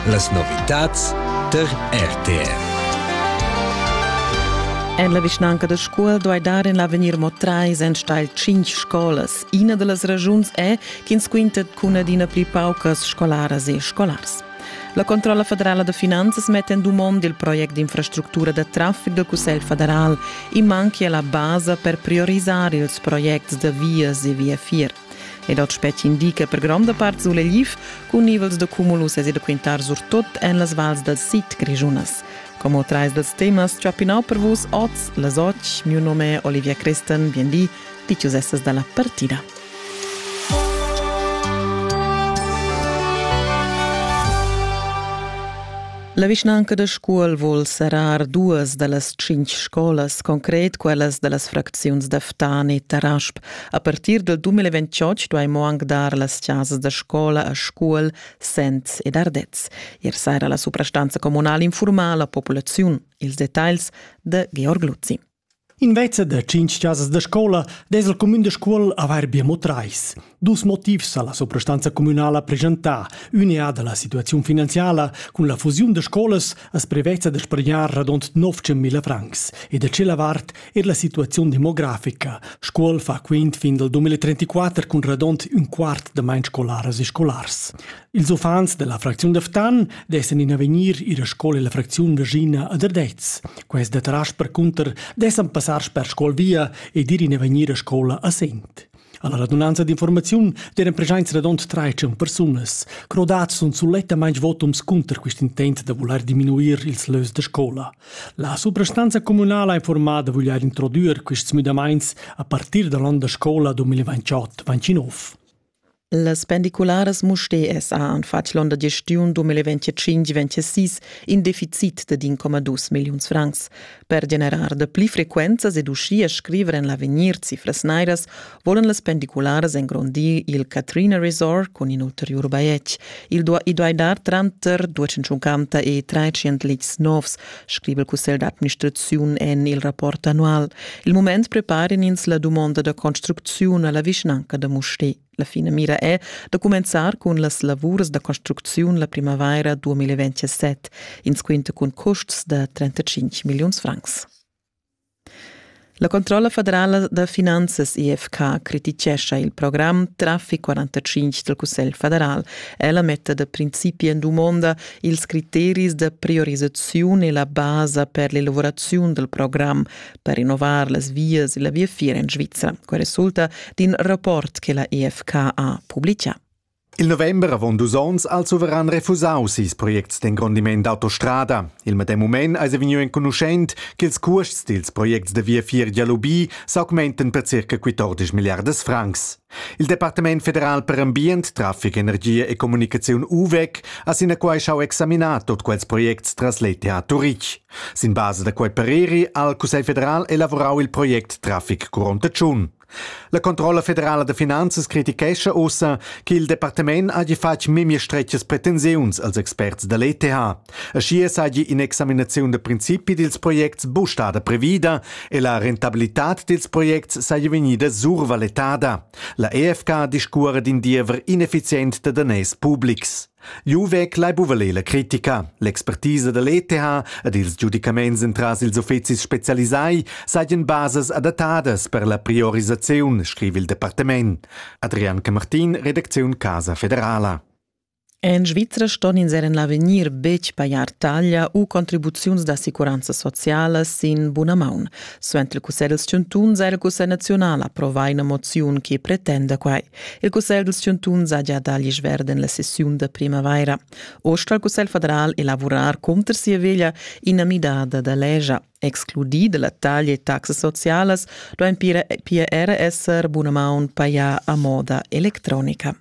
Las novitads tar RTR. En la vischnanca da Scuol duai dar en l'avegnir mo trais enstagl cinq scolas. Ina da las ragiuns è ch'ins quintet cun adina pli paucas scolaras e scolars. La Controlla federala da finanzas metta en dumond il project d'infrastructura da traffic dal Cussegl federal. I manchia la basa per priorisar ils projects da vias e viafier. Ed ot spetg indica per gronda part suleliv cun nivels da cumulus e da quintar surtut en las vals dal sid grischunas. Como trais dals temas chapinau per vus oz las och, mio nome è Olivia Christen, bienvì, ti essas dalla partida. La vischnanca da Scuol vul serrar duas da las cinc scolas, concret quellas da las fracziuns da Ftan e Tarasp, A partir del 2028 duai mo anc dar las chasas da scola a Scuol, Sens ed Ardez. Ier saira la suprastanza communal informa la populaziun. Ils detagls da Georg Luzzi. Invece da cinc chasas da scola des il cumün de Scuol avair bia mo trais. Dus motivs ha la suprastanza communala presentar. Uneada la situaziun finanziala cun la fusiun de scolas as prevezza de spargnar radont 900.000 francs e da cela vart Er la situaziun demografica. Scuol fa quint fin dal 2034 cun radont un quart da main scolaras e scolars. Ils uffants della fracziun da Ftan dessen in avegnir ir a scola la fracziun regina ad Ardez. Quest da Trasch percunter dessen passar sper Scuol via e dir in avegnir a scola a Sent. Alla radunanza d'informaziun deren presenza radont traitschun persunas. Crodats sun sulettamain votums cunter quest intent da voler diminuir ils lös da scola. La suprastanza communala ha informada voglier introdüer quests müdamaints a partir dall'on da scola 2028-29. Las pendicularas Muste SA han fatg l'onn da gestiun 2025-26 in deficit de 1,2 milliuns francs. Per generar de pli frequenzas ed uschia scriver en l'avegnir cifras nairas volan las pendicularas engrondir il Katrina Resort cun in ulteriur bajetg. Il do i duai dar tranter 250 e 300 lits novs, scrive il Cussegl d'administrazione en il rapport annual. Il moment preparan ins la domanda da construzione alla vicinanca de Mouchet. La finamira è da cumenzar cun las lavurs da construcziun la primavaira 2027, insquinta cun custs da 35 milliuns francs. La controlla federala da finanzas IFK criticescha il program Traffic 45 dal Cussegl federal. Ella metta da principi en dumonda ils criteris da priorisaziun e la basa per l'elaboraziun dal program, per rinnovar las vias e la viafier en Svizra. Quel resulta d'in rapport che la EFK ha publicà. Il november avon dus onns ha il suveran refusau ses projects d'engrondiment d'autostrada. Il medem mument eis vegniu enconuschent ch'ils cuosts dils projects da viafier Dialubi s'augmenten per circa 14 milliardas francs. Il Departament federal per ambient, traffic, energia e comunicaziun UVEC ha sinaquai schau examinar tot quels projects tras l'ETH Turitg. Sin basa da quei pareri ha il Cussegl federal elavorau il project Traffic Curonta Tschun. La controlla federala da finanzas critichescha ussa che il departament hagi fatg memia stretgas pretensiuns als experts da l'ETH. Aschia seigi in'examinaziun da principi dils projects bustada previda e la rentabilitad dils projects seigi vegnida survaletada. La EFK discuora d'in diever ineffizient da daners publics. Jeu vegl ei buca ler la critica. L'expertisa da l'ETH ed ils giudicaments entras ils uffecis specialisai seigien basas adattadas per la priorisaziun, scriva il departament. Adrian Camartin, Redacziun Casa Federala. En Svizra ston ins er en l'avegnir betg pajar taglia u contribuziuns d'assicuranzas socialas sin buna maun. Suenter il Cussegl dals chantuns ha il Cussegl naziunal approvà ina moziun che pretenda quai. Il Cussegl dals chantuns ha gia dà l'isch verd en la sessiun da primavaira. Oz sta il Cussegl federal elavurar cunter sia veglia ina midada da legia. Excludì da la taglia e taxas socialas duain pia era esser bunamaun pajà a moda electronica.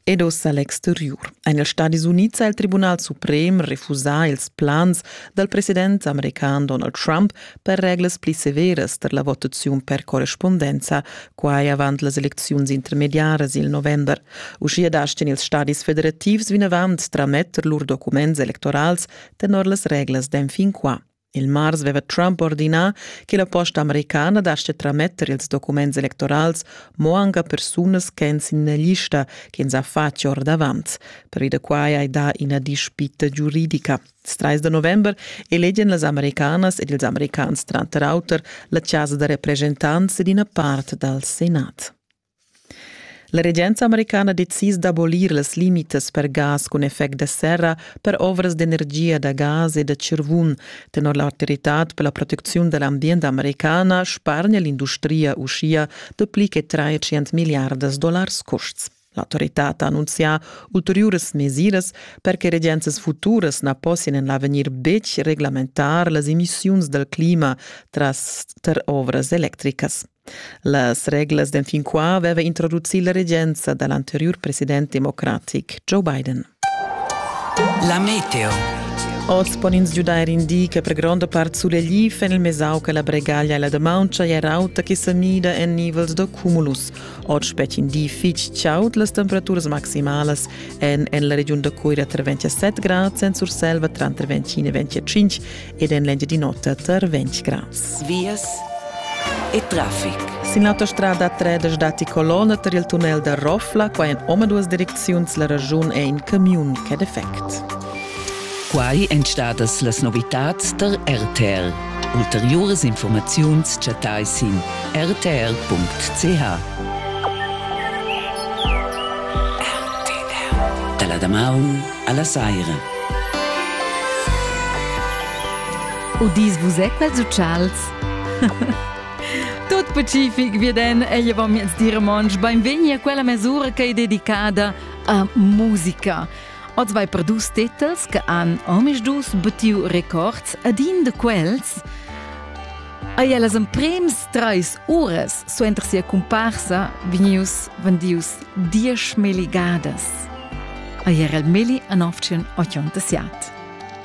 ed oz a l'exteriur. En ils Stadis Unids ha il Tribunal suprem refusà ils plans dal president american Donald Trump per reglas pli severas per la votaziun per correspondenza, quai avant las elecziuns intermediaras il november. Uschia dastin ils stadis federativs vinavant trametter lur documents electorals tenor las reglas d'enfin qua. Il mars veva Trump ordinà che la posta americana dascha trametter ils documents electorals mo anche a persunas ch'èn sin la lista ch'ins ha fatg ordavant. Per da quai hai dà ina dispita giuridica. Il 30 da november elegian las americanas ed ils americans tranter auter la chasa da represchentants ed ina part dal Senat. La regenza americana decis d'abolir las limitas per gas cun effect da serra per ovras d'energia da gas e da tschirvun. Tenor l'autoritad per la protecziun da l'ambient americana spargna l'industria uschia dapli che 300 miliardas dollars custs. L'autoritad ha annunzià ulteriuras mesiras per che regenzas futuras na possian en l'avegnir betg reglamentar las emissiuns dal clima tras tar ovras electricas. Las reglas d'enfin qua aveva introducì la regenza da l'anteriur president democratic Joe Biden. La meteo. Oz pon ins giudair in di che per gronda part sulegliv en il mesau che la bregaglia e la damauncha è rauta che sa mida en nivels da cumulus. Oz spetg in di fitg chaud, las temperaturas maximalas èn en la regiun da Coira tra 27 grads, en Surselva tranter 25 e 25 ed en l'Engiadin'Ota tar 20 grads. Vias e traffic. Sin l'autostrada 3 datti colonna tar il tunnel da Rofla, qua en omaduas direcziuns la raschun è in camiun ch'è defect. Quai èn stadas las novitads tar RTL. Ulteriuras informaziuns chattai sin rtl.ch. Da la damaun alla saira. O dis vus et quels uccials? Tot pacific vi den ella va miez dir monsch beinvegni a quella mesura che è dedicada a musica. Oz vai per dus titels che han omis dus betiu records ad in de quels. Ai las emprems Treis uras suenter sia cumparsa vegnius vendius dieschmilli gadas. Ei era il milli an oftion ochonta siat.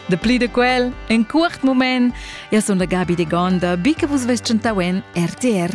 De pli de quel, en cuort moment, ja son la Gabi de Gonda, bica vus vestgentau en RTR.